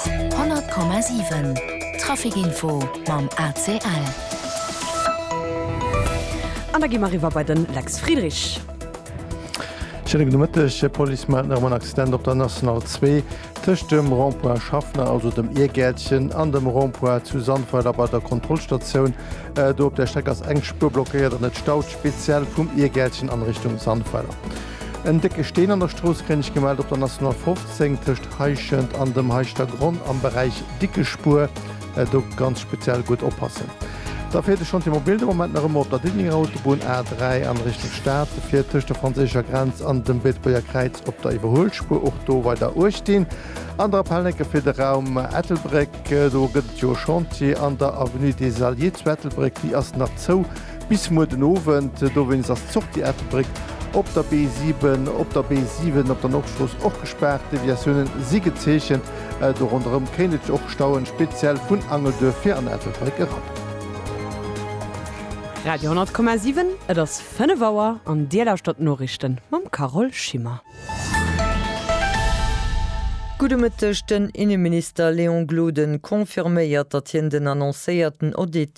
100,7 Traficinfo mam ACL. An da gi mer eriwwer bei de Lex Friedrich. Schéine gudde Mëtteg. Hie Police mellt nach ëm en Accident op der National 2 tëscht dem Rond-point Schaffner, also dem Iergäertchen, an dem Rond-point zu Sandweiler bei der Kontrollstatioun. Do op där Streck ass eng Spuer blockéiert an et staut, speziell vum Iergäertchen an Richtung Sandweiler. En décke Steen an der Strooss kréien ech gemellt op der National 15. Zéng tëscht Heischent an dem Heischter Gronn am Beräich Dickespuer. Do ganz speziell gutt oppassen. Da fiert de Chantier Mobil de Moment nach ëmmer op der Diddenger Autobunn A3 an Richtung Stad. Se fiert tëscht der franséischer Grenz an dem Beetebuerger Kräiz op der Iwwerhuelspuer. Och do weider Uecht dinn. Aner Appelleke fir de Raum Ettelbréck, Do gëtt et jo e Chantier an der Avenue des Alliés zu Ettelbréck. Déi ass nach zou. Bis muer den Owend, dowéinst ass d'Sortie Ettelbréck op der B7, op der B7 op der Nordstrooss och gespaart. Deviatioune si gezeechent. Do ronderëm kéint et sech och stauen, speziell vun Angelduerf fir an Ettelbréck erop. Radio 10,7, et ass 5 Auer an Dir lauschtert d'Noriichten mam Carole Schimmer. Gudde Mëtteg, Den Inneminister Léon Gloden confirméiert, datt hien den annoncéierten Audit,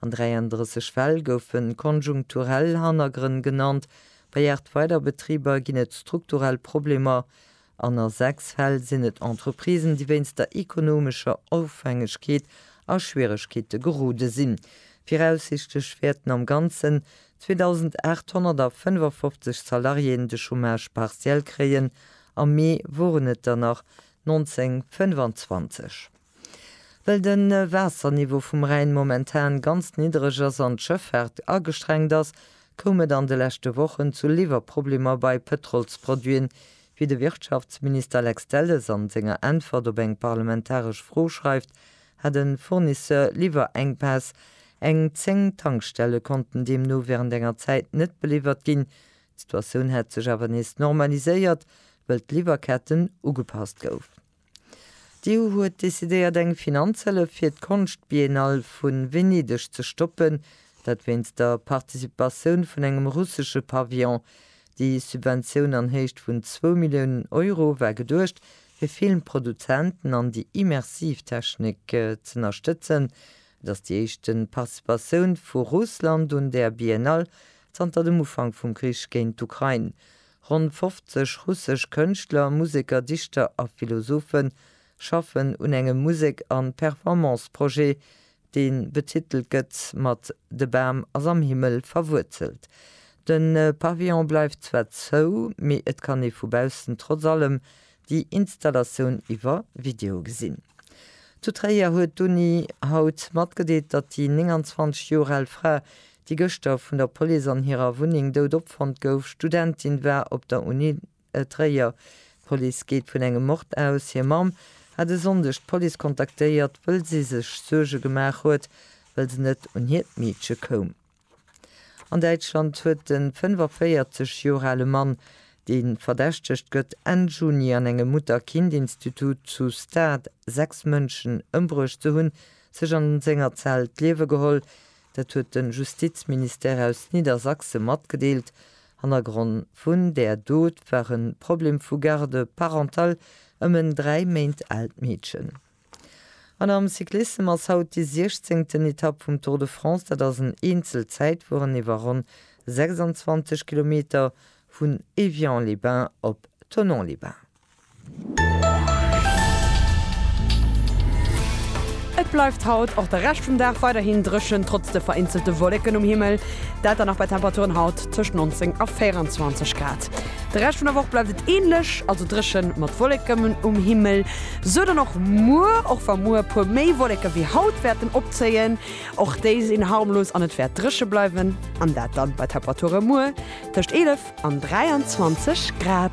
An 33 Fäll goufe konjunkturell Hannergrënn genannt, bei 8 weider Betriber ginn et strukturell Problemer an a 6 Fäll sinn et Entreprisen, déi wéinst der ekonomescher Ofhängegkeet a Schwieregkeete gerode sinn. Viraussichtlech wäerten am Ganzen 2.855 Salariéen de Chômage partiel kréien, am Mee woren et der nach 1.925. Well de Waasserniveau vum Rhäin momentan ganz niddereg ass an d'Schëffaart agestrengt ass, koum et an de leschte Wochen zu Liwwerproblemer bei Pëtrolsproduiten, wéi de Wirtschaftsminister Lex Delles an senger Äntwert op eng parlamentaresch Fro schreift, hat e Fournisseur Liwwerenkpäss. Eng 10 Tankstelle konnten deemno wärend enger Zäit net beliwwert ginn. D'Situatioun hätt sech awer nees normaliséiert, wëll d'Liwwerketten ugepasst goufen. D'EU huet decidéiert eng Finanzhëllef fir d'Konschtbiennale vu Venedeg ze stoppen, dat wéinst der Participatioun vun engem russesche Pavillon. Déi Subventioun an Héicht vun zwou Milliounen Euro war geduecht, fir Filmproduzenten an déi immersiv Technik z'ënnerstëtzen. Et ass déi éischte Participatioun vu Russland un där Biennale zanter dem Ufank vum Krich géint d'Ukrain. Ronn 50 russesch Kënschtler, Museker, Dichter a Philosophe schaffen un engem Musek an Performance-Projet, dee betitelt gëtt mat De Bam ass am Himmel verwuerzelt. De Pavillon bleift zwar zou, mee et kann ee vu baussen trotz allem déi Installatioun iwwer Video gesinn. Zu Tréier huet d'Uni haut matgedeelt, datt déi 29 Joer al Fra déi gëschter vun der Police an hirer Wunneng dout opfonnt gouf, Studentin war op der Uni Tréier. D'Police geet vun engem Mord aus. Hir Mamm hat e Sonndeg d'Police kontaktéiert, wëll si sech Suerge gemaach huet, well se net un hiert Meedche koum. An Däitschland huet de 45 Joer ale Mann, dee verdächtegt gëtt, Enn Juni an engem Mutter-Kind-Institut zu Stade sechs Mënschen ëmbruecht ze hunn, sech an senger Zell d'Liewe geholl, Dat huet de Justizministère aus Niedersachse matgedeelt. Hannergronn vun där Dot war e Problem vu Garde parentale ëm en dräi Méint aalt Meedchen. An am Cyclissem ass haut déi siechzéngten Etapp vum Tour de France. Dat ass en Eenzelzäitfueren iwwer ronn 26 Kilometer vun Évian-les-Bains op Thonon-les-Bains. Et bleift haut och de Rescht vum Dag weiderhin dréchen, trotz de vereenzelte Wolleken um Himmel. Dat dann nach bei Temperaturen haut tëscht 19 a 24 Grad. De Rescht vun der Woch bleift et änlech, also dréchen mat Wolleken um Himmel. Sou dann och muer, och wa muer e puer méi Wolleken wéi haut wäerten opzéien. Och déi sinn harmlos an et wäert dréche bleiwen, an dat dann bei Temperaturen muer tëscht 11 an 23 Grad.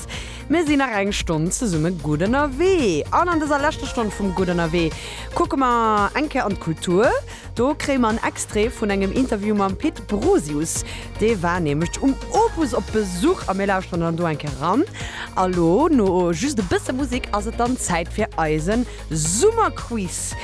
Podcast. Mir sinn nach eng Stonn zesumme gutt ënnerwee. An an dëser leschter Stonn vum Gutt ënnerwee kucke mer eng Kéier an d'Kultur. Do kréie mer en Extrait vun engem Interview mam Pit Brosius. Dee war nämlech um Opus op Besuch a mir lauschteren dann do eng Kéier eran. A lo, no just e bësse Musek, ass et dann Zäit fir eise Summerquiz.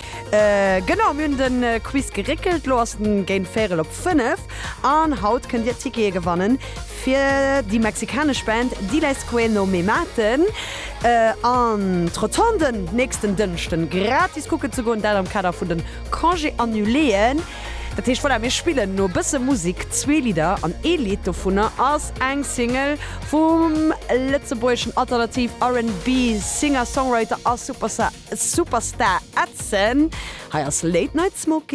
Genau, mir hunn de Quiz geréckelt. Lo ass en géint véirel op fënnef an haut kënnt Dir Tickete gewannen, Fir déi mexikanesch Band Diles que no me maten an Troton den nächsten Dënschden gratis kucken ze goen, dat am Kader vun de Congés annuléen. Dat heescht, voilà, mir spillen no e bësse Musek zwee Lidder an ee Lidd dovunner ass eng Single vum lëtzebuergeschen Alternativ RnB Singer-Songwriter a Superstar Edson. Hei ass Late Night Smoking.